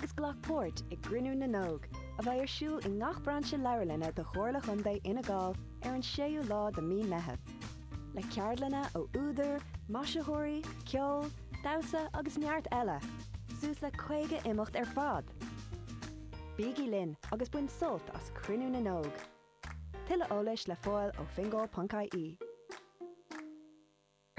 agus glac páirt i gCruinniú na nÓg, a bheidh ar siúl i ngach brainse leabharlainne de Chomhairle Contae Fhine Gall ar an 6ú lá de Mhí Meitheamh, le ceardlanna ó údair, maisitheoirí, ceol, damhsa agus neart eile, suas le 50 imeacht ar fad! Bígí linn agus bain sult as Cruinniú na nÓg! Tuilleadh eolais le fáil ó fingal.ie.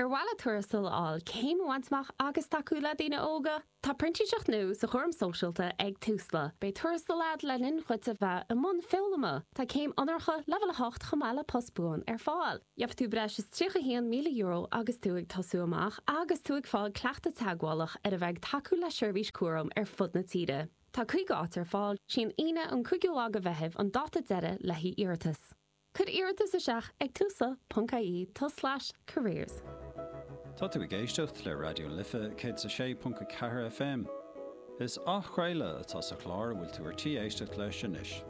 Ar mhaith leat tuarastal a fháil, céim a bhaint amach agus tacú le daoine óga? Tá printíseacht nua sa chúram sóisialta ag Tusla. Beidh tuarastal agat le linn dhuit a bheith i mbun foghlama. Tá céim onóracha leibhéal 8 chomh maith le post buan ar fáil. Gheobhaidh tú breis is €31,000 agus tú ag tosú amach agus tú ag fáil cleachtadh teagmhálach ar a bheith ag tacú le seirbhís cúraim ar fud na tíre. Tá 50 áit ar fáil. 'Sí an Aoine an 5ú lá de Mheitheamh an dáta deiridh le haghaidh iarratas. Cuir iarratas isteach ag Tusla ponc IE tulslais careers. Tá tú ag éisteacht le Raidió na Life 106.4 FM. Is athchraoladh atá sa chlár a bhfuil tú ar tí éisteacht leis anois.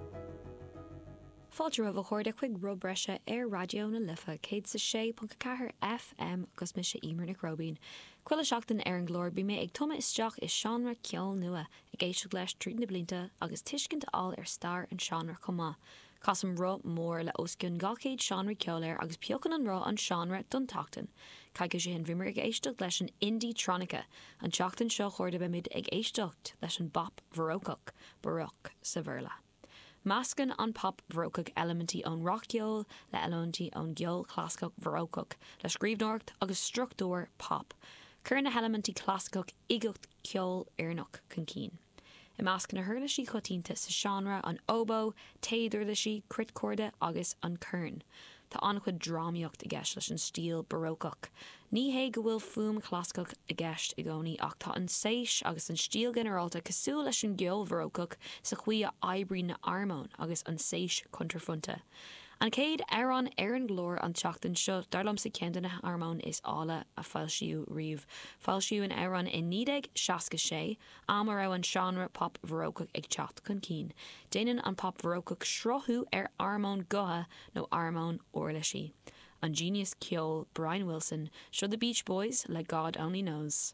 Fáilte romhaibh a chairde chuig Roth Breise ar Raidió na Life 106.4 FM is mise Eimear Nic Róibín. Chuile sheachtain ar an gclár bíonn mé ag tumadh isteach i seánra ceoil nua, ag éisteacht leis tríd na blianta agus tuiscint a fháil ar stair an seánra chomh maith. Casaim roth mór le os cionn 200 seánra ceoil air agus piocann an roth an seánra don tseachtain. Coicís ó shin bhíomar ag éisteacht leis an indietronica. An tseachtain seo chugainn beimid ag éisteacht leis an bpop bharócach, baroque sa Bhéarla. Meascann an pop bharócach eilimintí ón rac-cheol le eilimintí ón gceol chlasaiceach bharócach le scríbhneoireacht agus struchtúir pop. Cuireann na heilimintí clasaiceach uigeacht ceolfhoirneach chun cinn. I measc na huirlisí coitianta sa seánra, an óbó, téaduirlisí, cruitchorda agus an corn, tá an-chuid drámaíocht i gceist leis an stíl Barócach. Ní hé go bhfuil fuaim chlasaiceach i gceist i gcónaí ach tá an tséis agus an stíl ghinearálta cosúil leis an gceol Bharócach sa chaoi a oibríonn na harmóin agus an tséis cuntraphointe. An chéad amhrán ar an gclár an tseachtain seo dar liomsa ceann de na harmóin is áille a foilsíodh riamh. Foilsíodh an amhrán i 1966. am a raibh an seánra pop bharócach ag teacht chun cinn. Déanann an pop bharócach sruthú ar armóin gutha nó armóin uirlisí. An genius ceoil Brian Wilson, seo The Beach Boys le God Only Knows.